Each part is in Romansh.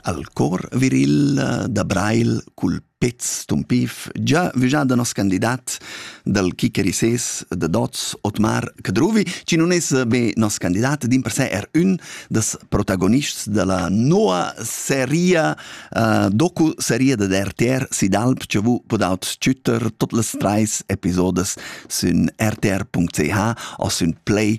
Al cor viril da Breil cul pez tumpif già vüjà da nos candidat dal Kikerises da Dots, Otmar Cadruvi, chi nun es be nos candidat, dimpersè er ün das protagonists da la noa seria uh, docu-seria dad RTR Sid Alp chi vu podaut schütter tot las trais episodes sün rtr.ch o sün Play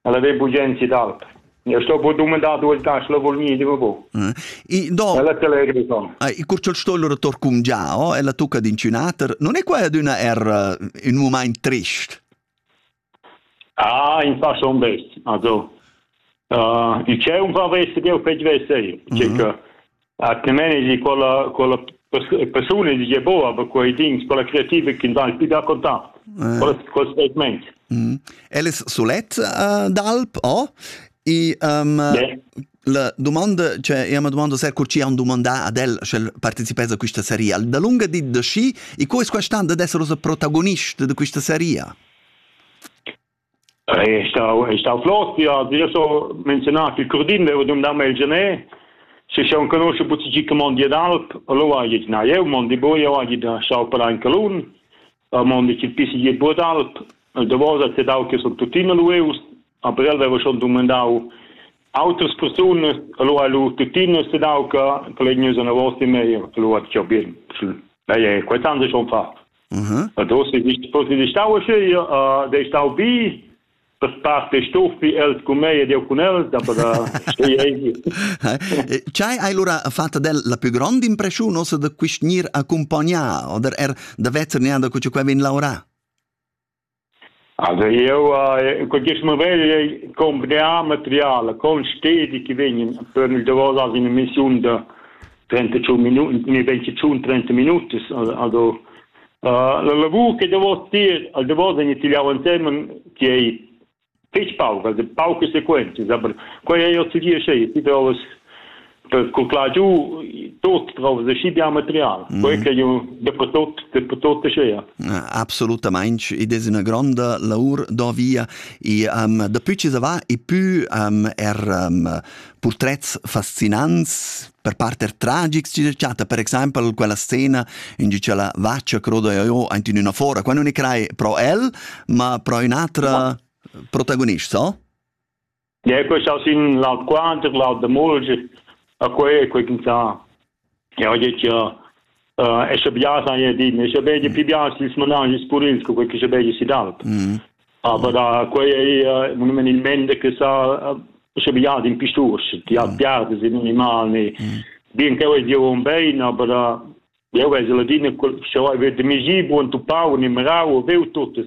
Ella dei bugenzi d'alp. Io sto bu dumandar duas gas, la vol mi, dico bu. Eh. No, Ella te legri son. ai, custol sto loro torcum già, oh, ella tucca d'inciunater. Non è quella d'una er eh, in un moment trist? Ah, in fa son best. Also, uh, il c'è un fa veste che ho fec veste io. Mhm. Cioè, atgnamein egi quella quella persuna egi gie boa aber quei dings quella creativa che dà più da contact quel quel statement mm. el es solet uh, d'alp o e um, yeah. la domanda cioè io mi domando se curci un domanda ad el sche partecipes a questa serie da lunga di da sci e questa stand ad essere protagonist di questa serie Ei ei stau ei stau flot, ja, io so menzionar che Curdin veva dumdau mei il Genet, se se un conosce buca gi che mondi d'alp, allora ha git na eu mondi bu, io ha git schau para in calun, a mondi chi pisi gi bu d'alp, davosa te dau che son tuttina lueus, aber el veva schon dumandau autras persunas, allora lu tuttina se dau che che legnusa na vosti mei, allora tgau bien, schön. Beh, quei tan se schon fa. Da posi di stau io dei stau bi per part dei stuffi els cun mei ed eu cun els da per stei ei. Chai hai lura fatta del la più grande impressione ossa da quist gnir accompagnar oder er da vezzer neanda cu quai vegn laurà? Also eu in quist mument ei compleà materiala con stedi chi vegnan per nus davos as in emissiun da 35 minut, ni 25, 30 minutas. Also la lavur che davos tier, davos vegn tigliau ensemen, chi ei fich pauc, weil pauc Sequenzen, aber quei ei ozidier schei, ti doves per cuclar giu tot drauf de schi bia material. Mm. Quei che io dopo tot dopo tot schea. Assolutamente, ed è una grande lavor da via e um, da più ci va e più um, er um, portrets fascinants Per parter tragics chi chatta per exaimpel quella scena in gi cha la vaccia croda io aint in üna fora. Qua nun e crai pro el, ma pro ün'atra protagonist, so? Ja, quest aus in laut quanter, laut da mulger, a quei e quei quinta. Ja, ho dit ja, e sche bias hai din e sche bedi pi bias ils managis purils co che sche bedi si d'alp aber da quei ei monumentalmente che sa sche bias in pistur ti ha piarde in animal ni bien che ei dio un bein aber eu ves la din sche vai ver de migi buon tu pau ni marau veu tuttes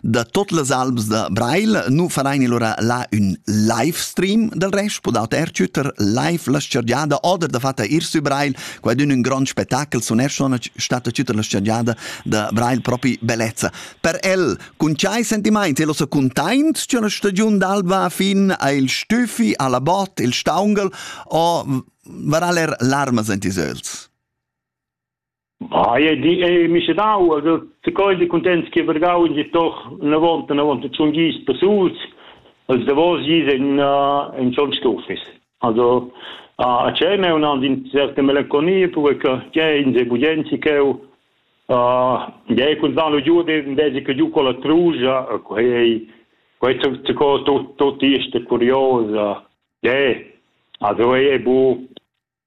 Da tot las albs da Breil nu farein allura là ün live stream del resch, podau ertschütter live la scergiada oder da fatta ir sü Breil, quai d'ün ün grand spettacel suneschon stata tschütter la scergiada da Breil propi bellezza. Per el, cun ciai sentimaints, el ossa containt, c'è una stagiun d'alba fin al Stüffi, alla Bot, il Staungel, o varà ler larmas ent is öls. Ei ei di ei misedau, also tgei di contents che vargau in di doch unavont unavont tschun gis persuls, als davos gis en uh, en schon stufis. Also a tschem è un an in certe melanconia perché che in se budenzi cheu Dei kun dan giu de de che giu con la truja quei quei tu co tu tu ti sta curiosa. Dei also è bu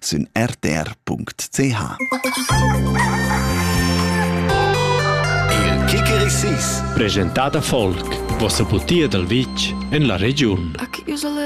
sün rtr.ch. Il Kickerisis. Presentada folk. Vossa putia dal vitg en la regiun.